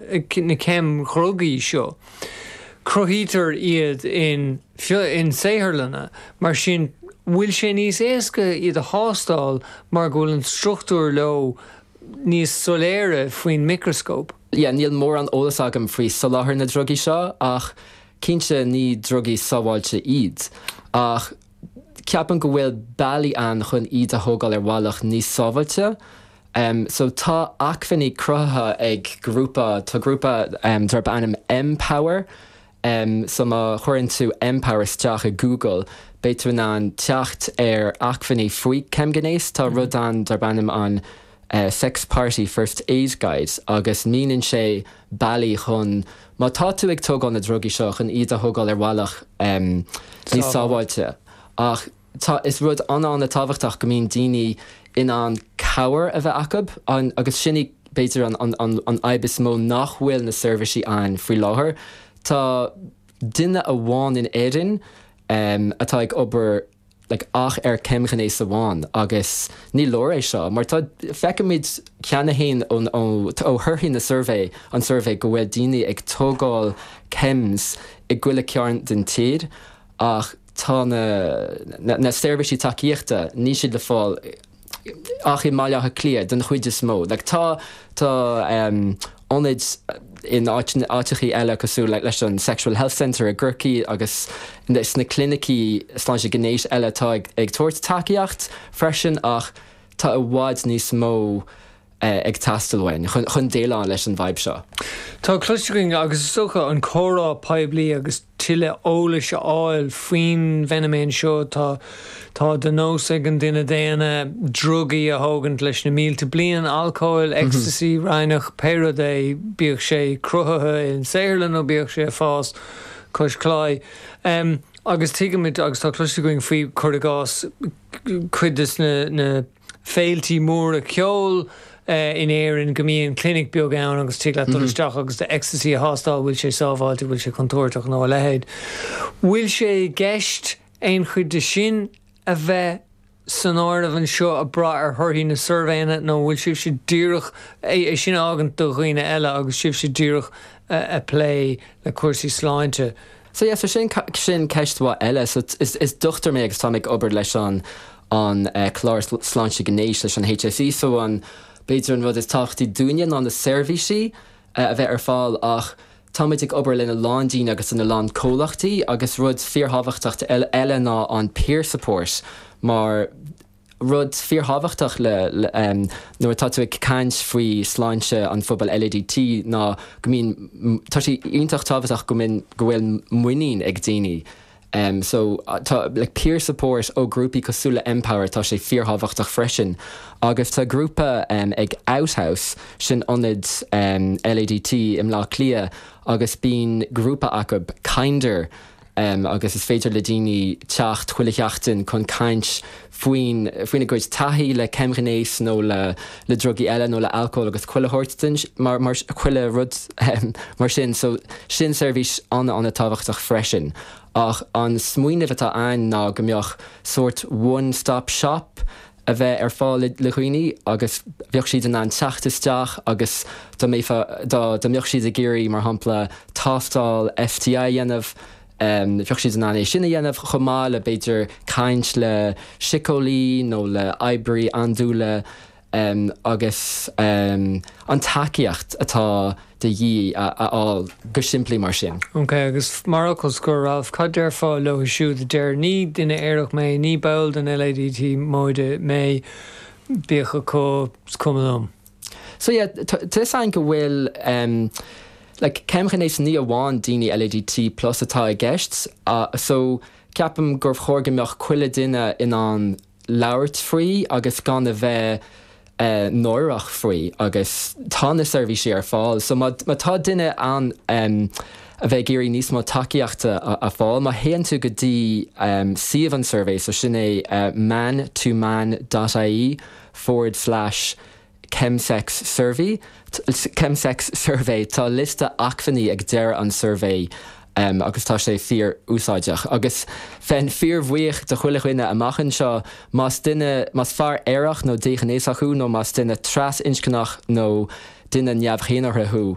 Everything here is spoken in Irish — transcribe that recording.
na ceimdhrugaí seo, cruthaítear iad in saotharlanna, mar sin bhfuil sé níos éasca iad a thástáil mar go bhfuil an struchtúr leo níos soiléire faoin micreascóp. yeah níl mórán eolas agam faoi sholáthar na drugaí seo ach cinnte ní drugaí sábháilte iad ach. ceapaim go bhfuil bealaí ann chun iad a thógáil ar bhealach níos sábháilte. So tá acmhainní cruthaithe ag grúpa, tá grúpa darb ainm M-Power. So má chuireann tú M-Power isteach i Google, beidh tú in ann teacht ar acmhainní faoi ceimghnéas. Tá rud ann darb ainm an. Sex Party First Aid Guide agus mínionn sé bealaí chun má tá tú ag tógáil na drugaí seo chun iad a thógáil ar bhealach níos sábháilte. Ach tá is rud an-an-tábhachtach go mbíonn daoine in ann cabhair a bheith acu agus sin í b'fhéidir an fhadhb is mó nach bhfuil na seirbhisí ann faoi láthair. Tá duine amháin in Éirinn atá ag obair. like, ach ar cheimghnéas amháin agus ní leor é seo mar tá, feicimid cheana fhéin ó thorthaí na suirbhé, an tsuirbhé go bhfuil daoine ag tógáil chems i gchuile chearn den tír ach tá na, na, na seirbhísí tacaíochta, níl siad le fáil. ach i mBaile Átha Cliath den chuid is mó. Tá ionaid in áiteachaí eile cosúil leis an Sexual Health Centre i gCorcaigh agus sna clinicí sláinte gnéis eile atá ag tabhairt tacaíocht freisin ach tá i bhfad níos mó ag teastáil uainn chun déileáil leis an bhfadhb seo. Tá cloiste againn agus is dócha an comhrá poiblí agus. tuilleadh eolais a fháil faoin bhfeiniméan seo. Tá de nós ag an duine daonna drugaí a thógaint leis na mílte bliain, alcól, ecstasy, raithneach, pé rud é, bíodh sé cruthaithe i saotharlann nó bíodh sé ag fás cois claí. Agus tuigimid, agus tá cloiste againn faoi, cuir i gcás, cuid de na. féiltí móra ceoil in Éirinn go mbíonn clinic beag ann agus tig leat dul isteach agus do ecstasy a thástáil, bhfuil sé sábháilte, bhfuil sé contúirteach nó a leithéid. Bhfuil sé i gceist aon chuid de sin a bheith san áireamh anseo, ag brath ar thorthaí na suirbhéanna, nó an bhfuil sibhse díreach, é sin a fhágaint do dhaoine eile, agus sibhse díreach ag plé le cúrsaí sláinte? So yeah, so sin sin ceist mhaith eile. So is is dochtúir mé agus táim ag obair leis an an eh, clár sláinte gnéis leis an HSE. So an b'fhéidir an rud is tábhachtaí dúinne ná na seirbhísí eh, a bheith ar fáil ach táimid ag obair lena lán daoine agus lena lán comhlachtaí agus rud fíorthábhachtach eile ná an peer support mar Rud fíorthábhachtach le nuair atá tú ag caint faoi sláinte an phobail LADT ná go mbíonn, tá sé iontach tábhachtach go mbíonn, go bhfuil muinín ag daoine. So tá like peer support ó ghrúpaí cosúil le Empower, tá sé fíorthábhachtach freisin. Agus tá grúpa ag Outhouse, sin ionad LADT i mBleá Cliath agus bíonn grúpa acu, Kinder, em agus is féidir le daoine teacht chuile sheachtain chun caint faoin faoina gcuid taithí le ceimghnéis nó le le drugaí eile nó le alcól agus chuile shórt den chuile rud em mar sin so sin seirbhís an-an-tábhachtach freisin ach an smaoineamh atá a'ainn ná go mbeadh sórt one stop shop a bheith ar fáil le dhaoine agus bheadh siad in ann teacht isteach agus dá mbeifeá, dá mbeadh siad ag iarraidh, mar shampla, tástáil STI a dhéanamh, bheadh siad in ann é sin a dhéanamh chomh maith le, b'fhéidir, caint le síceolaí nó le oibrí andúile agus an tacaíocht atá. de dhíth a fháil go simplí mar sin. OK, agus mar fhocal scoir, Ralph, cad déarfá leo siúd a deir, ní duine aerach mé, ní ball den LADT móide mé, bíodh acu, is cuma liom? So yeah, tá a fhios a'ainn go bhfuil em, like, ceimghnéas ní amháin daoine LADT plus atá i gceist, uh, so ceapaim gur chóir go mbeadh chuile duine in ann labhairt faoi agus gan a bheith náireach faoi agus tá na seirbhísí ar fáil so má tá duine ann a bheith ag iarraidh níos mó tacaíochta a fáil, má théann tú go dtí suíomh an tsuirbhé so sin é man to man dot ie forward slash Chemsex Survey, Chemsex Survey, Tá liosta acmhainní ag deireadh an tsuirbhé agus tá sé fíor-úsáideach. Agus bheinn fíorbhuíoch de chuile dhuine amach anseo más duine, más fear aerach nó déghnéasach thú nó más duine trasinscneach nó duine neamh-dhénártha thú,